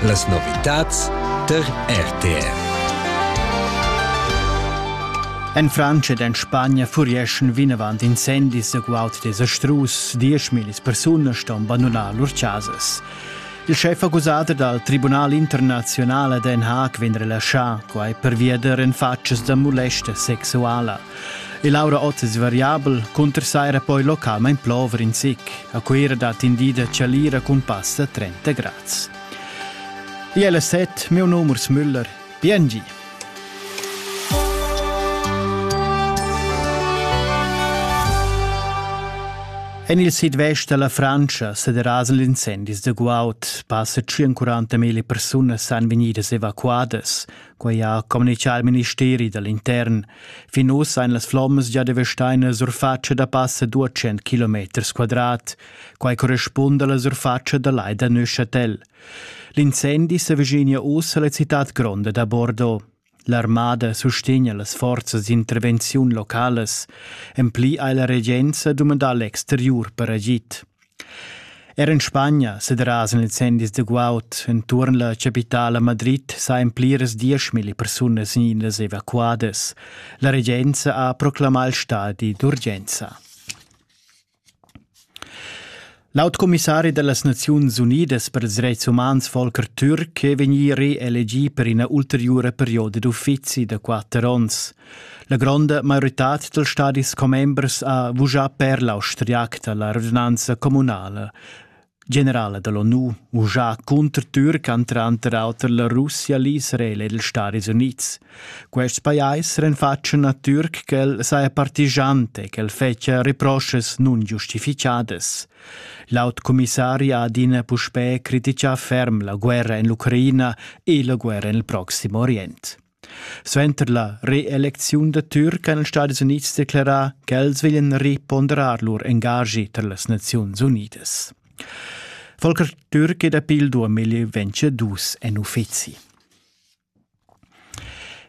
Las novitads tar RTR. En Frantscha ed en Spagna furieschan vinavant incendis egual desastrus. Dieschmillis persunas ston bandunar lur chasas. Il schef accusader dal Tribunal internazional a Den Haag vegn relaschà, quai pervia da renfatschas da molesta sexuala. E Laura Ott es variabel, cunter saira poi localmaing plover in sic. A Cuira dat in di da chalira cun pass da 30 grads. ILZ, meu numero Müller, PNG. En il sidvest da la Frantscha se derasen gli incendis da guaud. Passa 40.000 persunas san vegnidas evacuadas. Quei ha communicà il ministeri dall'intern. Fin uss ein las flommas già devestaina surfatscha da passa 200 km quadrat. Quei corrispunda alla surfatscha da lai da Neuchâtel. L'incendi s'avvicina uss alla cittad gronda da Bordeaux. L'armada sustegna las forzas d'intervenziun localas. En pli ha la regenza dumandà l'exteriur per agid. Er en Spagna sederasan incendis da guaud enturn la capitala Madrid sajan pliras dieschmilli persunas vegnidas evacuadas. La regenza ha proclamà il stadi d'urgenza. Laut commissari dellas Naziuns Unidas per ils dretgs umans Volker Türk è vegnì reelegì per ina ulteriura perioda d'uffizi da quatter onns. La gronda maioritad dals stadis commembers ha vuschà per l'austriac da la radunanza communala. Generala da l'ONU vuschà cunter Türk han tranter auter la Russia, l'Israel ed ils Stadis Unids. Quests pajais renfatschan a Türk ch'el saja partigiante, ch'el fetschia reproschas nungiustificadas. L'aut commissari ha adina puspè critichà ferm la guerra en l'Ucraina e la guerra en il Proxim Orient. Suenter la reelecziun da Türk han ils Stadis Unids declerà ch'els veglian reponderar lur engaschi tar las Naziuns Unidas. Volker Türk è dapi il 2022 en uffizi.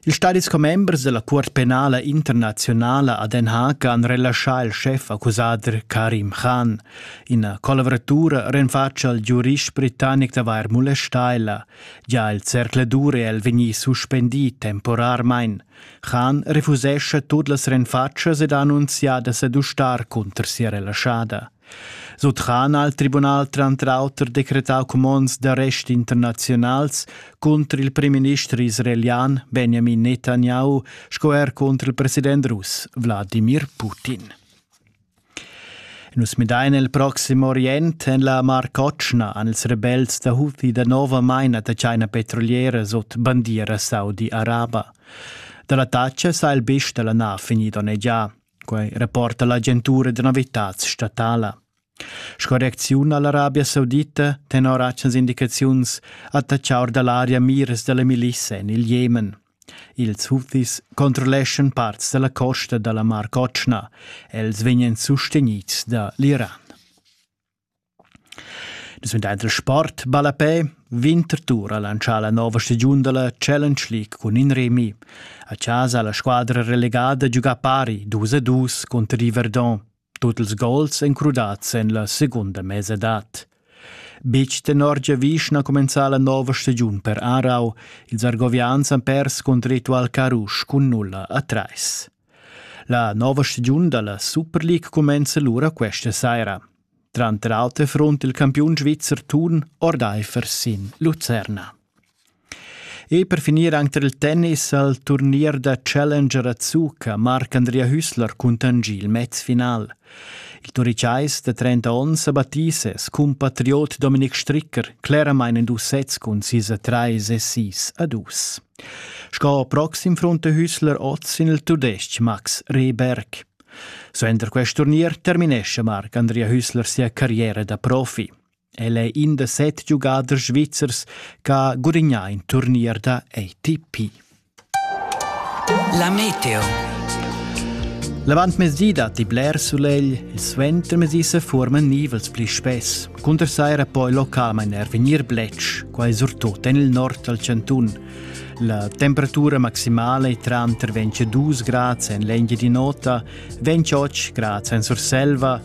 Ils stadis commembers della Cuort penala internazionala a Den Haag han relaschà il chef accusader Karim Khan. Ina collaboratura renfatscha al giurist britannic d'avair molestà ella. Gia il zercladur è el vegnì suspendì temporarmain. Khan refusescha tut las renfatschas ed annunzia da sedustar cunter sia relaschada. Sut Khan ha il tribunal tranter auter decretau cumonds d'arrest internazionals cunter il premierminister israelian Benjamin Netanyahu sco er cunter il president russ Wladimir Putin. Nus midain el proxim orient en la Mar Cotschna han ils rebels da Houthi danovamain da tschaina petrolieras ot bandiera saudi-araba. Da l'attacca sa il bist da la nav vegnì donnegià. Quai rapporta l'agentura da novitads statala. Sco reacziun a l'Arabia Saudita tenor atgnas indicaziuns attaccha or da l'aria miras da la milissa en il Jemen. Ils Houthis controlleschan parts da la costa da la Mar Cotschna. Els vegnan sustegnids da l'Iran. Nus vegn dad sport ballapè Winterthur ha lantschà la nova stagiun da la Challenge League cun in remi. A chasa ha la squadra relegada giugà pari 2 a 2 cunter i Verdun. Tut ils gols ein crudads en la secunda mesadad. Betg tenor giavisch na cumenzà la nova stagiun per Aarau. Ils argovians han pers cont ritual Carusch cun nulla a trais. La nova stagiun dalla Super League cumenza lura questa saira. Tranter auter front il campiun svizzer Thun ordaifer sin Lucerna. E per finir anc tar il tennis al turnier da Challenger a Zuca marca Andrea Hüssler cuntanschì il mezfinal. Il Turicais da 30 onns a battì ses cumpatriot Dominik Stricker cleramain en dus sets cun sis a trais e sis a dus. Sco proxim frunta Hüssler oz sin il tudestg Max Rehberg. Suenter quest turnier terminesce Marc Andrea Hüssler sia carriera da profi. El è in da set giugaders svizzers ch'ha gurignà in turnier da ATP. La meteo. L'avantmezdi datti bler sulegl, il suentermezdi se forman nivels pli spess. Cunter saira poi localmain er vegnir bletsch, quai surtut en il nord dal chantun. La temperatura maximale è tranter 22 grads en l'engia di nota, 28 grads en Surselva